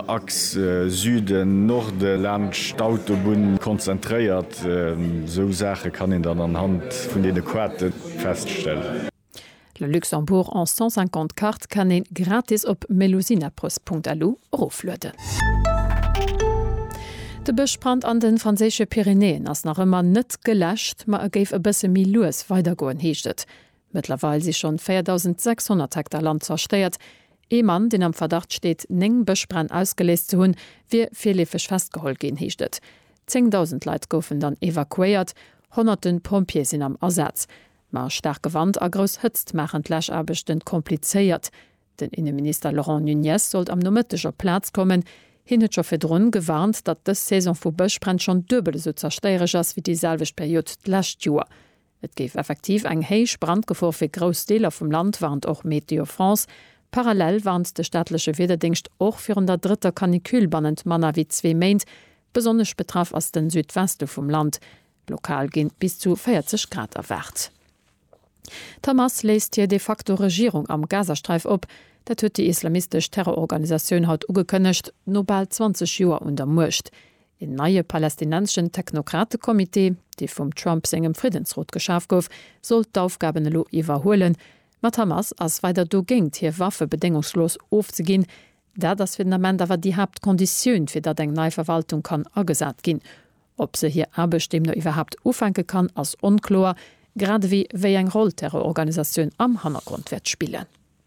Axe Süden, Norde laanscht d'Autobunn konzentréiert. Esou Saache kann een dann anhand vun deene Quarte feststellen. Le Luxembourg en 150 Kart kann een gratis op melusinappress.lu eroflueden. De Bëschbrand an de franséische Pyrenäen ass nach ëmmer net geläscht, ma e géif e bësse méi lues weidergoen, heescht et. Mëttlerweil si schonn 4.600 Hektar Land zerstéiert. Ee Mann, deen am Verdacht steet, néng Bëschbränn ausgeléist ze hunn, wier virleefeg festgeholl ginn, heescht et. Zéngdausend Leit goufen dann evakuéiert, honnerte Pompjeeë sinn am Asaz. Ma staarke Wand a grouss Hëtzt maachen d'Läschaarbechten komplizéiert. Den Inneminister Laurent Nunez sollt am Nomëtteg op d'Plaz kommen. Hien huet scho virdrun gewarnt, datt dës Saison vu Bëschbränn schonn duebel esou zerstéiereg ass wéi déi selwecht Period d'lescht Joer. Et géif effektiv eng héich Brandgefor fir grouss Deeler vum Land, warnt och Météo France. Parallel warnt de staatleche Wiederdéngscht och virun der drëtter Canicule bannent manner wéi zwee Méint. Besonnesch betraff ass de Südweste vum Land. Lokal gi bis zu 40 Grad erwaart. D'Hamas léisst hir de facto Regierung am Gazasträif op. Dat huet déi islamistesch Terrororganisatioun haut ugekënnegt, no bal 20 Joer un der Muecht. Een neie palästinenseschen Technokratekommitee, dee vum Trump sengem Friddensrot geschaf gouf, soll d'Aufgaben elo iwwerhuelen, ma d'Hamas ass weider dogéint, hir Waffe bedéngungslos ofzeginn. Dat ass fir den Ament awer déi Haaptkonditioun, fir datt eng nei Verwaltung kann agesat ginn. Ob se hir Aarbecht deemno iwwerhaapt ufänke kann, ass onkloer, gradewéi wéi eng Roll d'Terrororganisatioun am Hannergrond wäert spillen.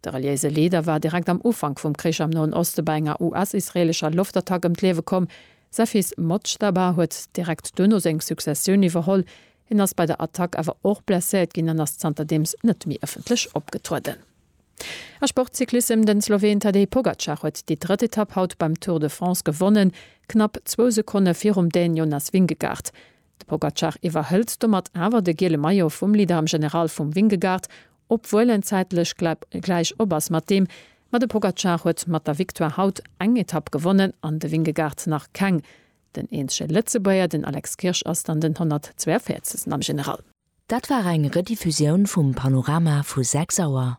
De reliéise Leader war direkt am Ufank vum Krich am Noen Oste bei enger US-israeelescher Loftattack ëm d'Liewe komm. Säi Fils Mojtaba huet direkt duerno seng Successioun iwwerholl. Hien ass bei der Attack awer och blesséiert ginn an ass zanterdeems net méi ëffentlech opgetrueden. A Sportcyclissem, De Sloween Tadej Pogacar huet déi drëtt Etapp haut beim Tour de France gewonnen, knapp zwou Sekonne virum Dän Jonas Vingegaard. De Pogacar iwwerhëlt domat awer de giele Maillot vum Leader am General vum Vingegaard, obwuel en zäitlech gläich op ass mat deem. Ma de Pogacar huet mat der Victoire haut eng Etapp gewonnen an de Vingegaard nach keng. Den eenzege Lëtzebuerger, den Alex Kirsch, ass dann den 142. am General. Dat war eng Rediffusioun vum Panorama vu 6 Auer.